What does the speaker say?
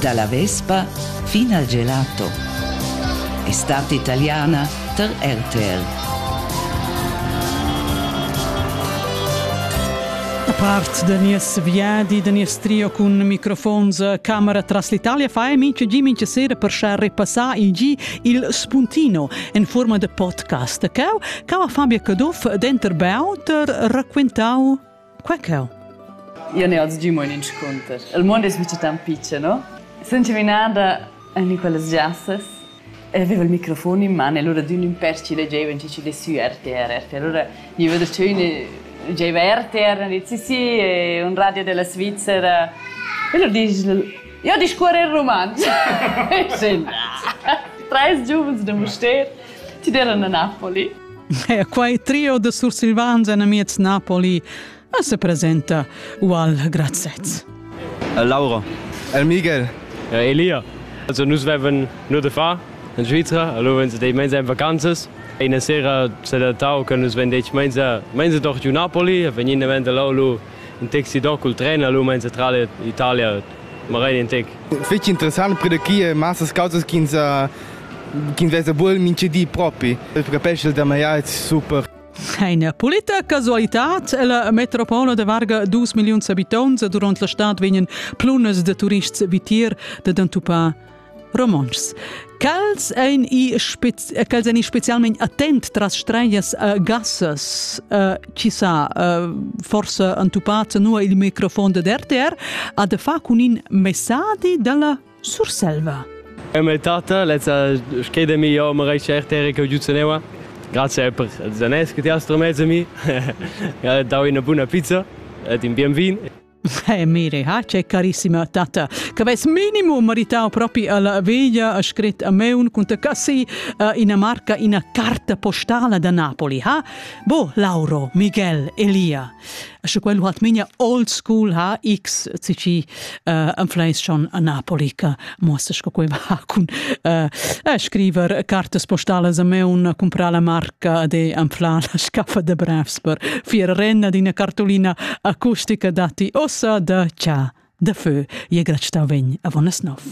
Dalla vespa fin al gelato è stata italiana tar RTR. A part da nies viadi, da nies trio cun microfons a camera tras l'Italia fa e mincha gi mincha sera per schar repassar il gi il spuntino en forma de podcast. Cau, cau a Fabio Caduff denter Beauter raquentau Qua cheu? Io ne oz giu mo in inscunter. Il mondo es mica tan pitschen, no? Sun chaminada in quellas giassas e aveva il microfon in man e allora d'ün ün pèr ci leggeva in ci ci de sü RTR. RTR. Allora gniva da cheu ne giaiva RTR e dit sì sì è un radio della Svizzera. E allora disch io discuorre in rumantsch. Sì. Treis giuvens da Mustér, ci deran a Napoli. E quai trio de sursilvans en amiez Napoli se presenta ual grazez. Laura. El Miguel. Ja, Elia. Also nus veven nur de fa in Svizzera, allora wenn sie dei mens ein vacanzas. E una sera s'è adattau che nus ven dei mens mens doch giù Napoli, e vegnine vend lau lu in tec sidon cul tren a l'Umain centrala Italia, magari in tec. Feci interessant per chi è massas causas che ins che investa bul minchedi propi. Il capesce da maiar è super. Eine Politecasualität ella metropola de Varga 2 milliuns abitants durant la stad vegnan plunas de turists vitier de entupar romontschs. Quels ein i, spez quels ein i specialment attent tras streias uh, gassas uh, chi sa uh, forse entupats nu il microfon de RTR a de fa cun in messadi dalla Surselva. E me tata lezza schei de mi io me reice RTR che giuzzo neua. Grazie per Zanes che ti hast mezzo mi. Dau una buona pizza ed in bien vin. Eh, mire, ha c'è carissima tata, che avess minimum meritau propi alla veglia, ha scrit a me un cunta cassi uh, ina marca, ina carta postala da Napoli, ha? Bo, Lauro, Miguel, Elia. Sche quello hat minia old school ha X, cici uh, influenz schon a Napoli, che muossas co quei va cun uh, scriver cartas postalas a me un comprar la marca de anflar la scaffa de brevs per fier renna d'ina cartolina acustica dati ossa da cha da fö je grad sta ven a vonas nov.